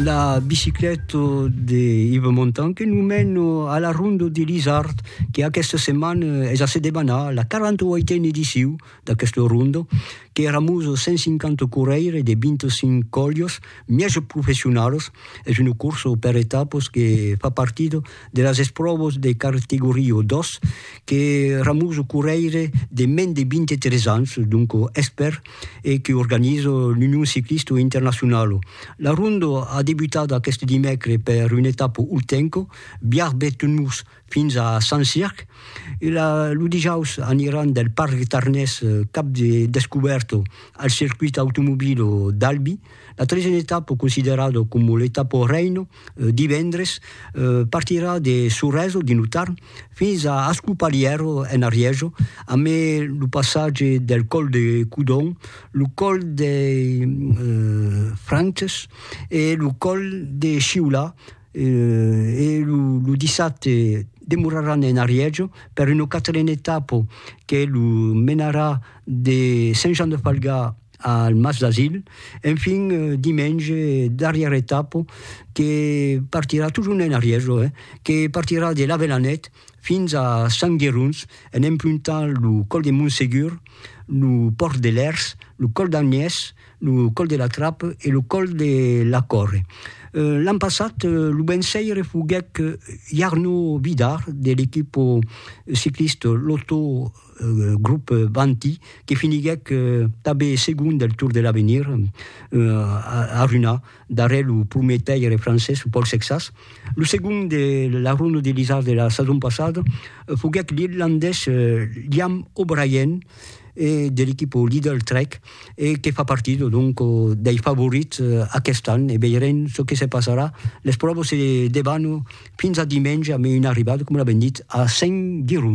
la bicicleta de Yves Montan que nous mène à la ronde de l'Isard, que aquesta setmana es a se debanar la 48a ediciu d'aquesta ronda, que éramos 150 correire de 25 colhos, mièges professionals, es una corsa per etapas que fa partida de las espròvas de cartegoria 2 que Ramuso Correire de mens de 23 ans, donc expèrt, e que organiza l'Union Ciclista Internacionala. La ronda a debutat aqueste dimècres per una etapa ultenca, Biarb-Betmurs fins a Sant Circ, e lo dijaus aniran del Parc Tarnés cap de descubèrta al circuit automobila d'Albi, la tresena etapa considerada coma l'etapa reina. divendres, partirà de Sorèso, dins lo Tarn, fins a Ascopalièro, en Arièjo, a mai lo passatge del còl de Codon, lo còl dei Frances e lo còl de Sciolà, e lo dissabte demoraràn en Arièjo per una quatrena etapa que lo menarà de Sent Jan de Falgà, al Mas d'Asil, enfin dimenge darrièra etapa que partirà totjorn en arrièr jo eh, que partirà de l'Avelanèt fins a Sant Gerons en empruntant lo còl de Montsegur, lo pòrt de Lèrs, lo còl d'Agnès, lo còl de la Trape e lo còl de la Còrre. L'an passat lo vençaire foguèt Jarno Vidar de l'equipa ciclista Lotto. grop Vanti, que finiguèc tanben segon del Tour de l'Avenir, arruïnat darrèr lo prumèr taire francés, lo Paul Sexas. Lo segon de la Ronde de l'Isard de la sason passada foguèc l'irlandés Liam O'Brien de l'equipa Lidl Trek e que fa partir donc dei favorits aquest an e veirem çò que se passarà. Les pròvas se debanam fins a dimenge amb una arribada, coma l'avèm dit, a Saint-Girons.